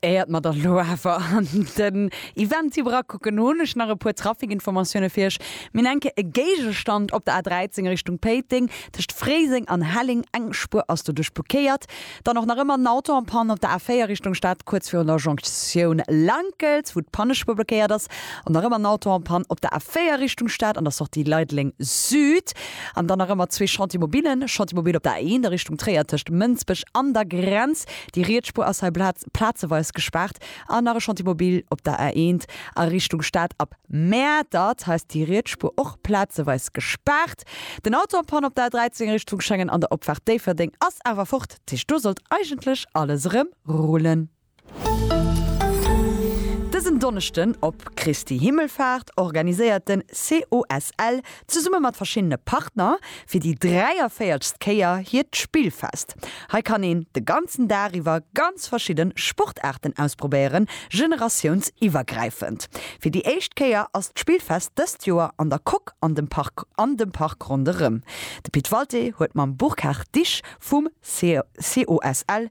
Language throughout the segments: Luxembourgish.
Éiert mer dann elo awer an den Event iwwer akucken, hunn ech nach e puer Trafikinformatioune fir iech. Mir hunn enke e Géigestand op der A13 Richtung Péiteng, tëscht Fréiseng an Helleng. Eng Spuer ass doduerch blokéiert. Dann och nach ëmmer en Auto en panne op der A4 Richtung Stad, kuerz virun der Jonktioun Lankelt, wou d'Pannespuer blokéiert ass. Och nach ëmmer en Auto en panne op der A4 Richtung Stad, an der Sortie Leideleng Süd. An dann nach ëmmer zwee Chantiers mobiles, Chantier mobile op der A 1 a Richtung Tréier tëscht Mënsbech an der Grenz, déi riets Spuer ass hei plazeweis gespaart, an nach e Chantier mobile op der A 1 a Richtung Stad ab Mäertert, hei ass déi riets Spuer och plazeweis gespaart. Den Auto am Panne op der A 13 Richtung Schengen an der Opfaart Déifferdeng ass awer fort, dat heescht do sollt eigentlech alles erëm rullen. Dësen Donneschden op Christi Himmelfaart organiséiert den COSL zesumme mat verschiddene Partner fir déi 43. Kéier hiert Spillfest. Hei kann een de ganzen Dag iwwer ganz verschidden Sportaarten ausprobéieren, generatiounsiwwergräifend. Fir déi éischt Kéier ass d'Spillfest dëst Joer an der Coque an dem Park an dem Park ronderëm. De Pit Walté huet mam Burkhard Disch vum COSL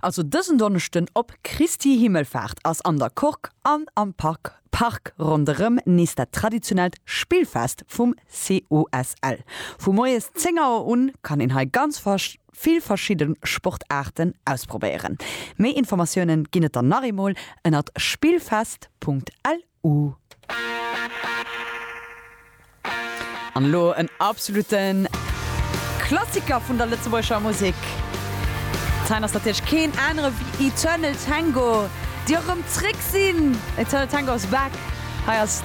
Also dësen Donneschden op Christi Himmelfaart ass an der Kork an am Park ronderëm nees dat traditionellt Spillfest vum COSL. Vu moies 10 Auer un kann een hei ganz vill verschidde Sportaarten ausprobéieren. Méi Informatiounen ginn et dann nach eemol ënnert spillfest.lu. u. An elo en absolute Klassiker vun der lëtzebuergescher Musek. Dat hei ass natierlech keen anere wéi Eternal Tango, déi och erëm zréck sinn. Eternal Tango is back. Hei ass.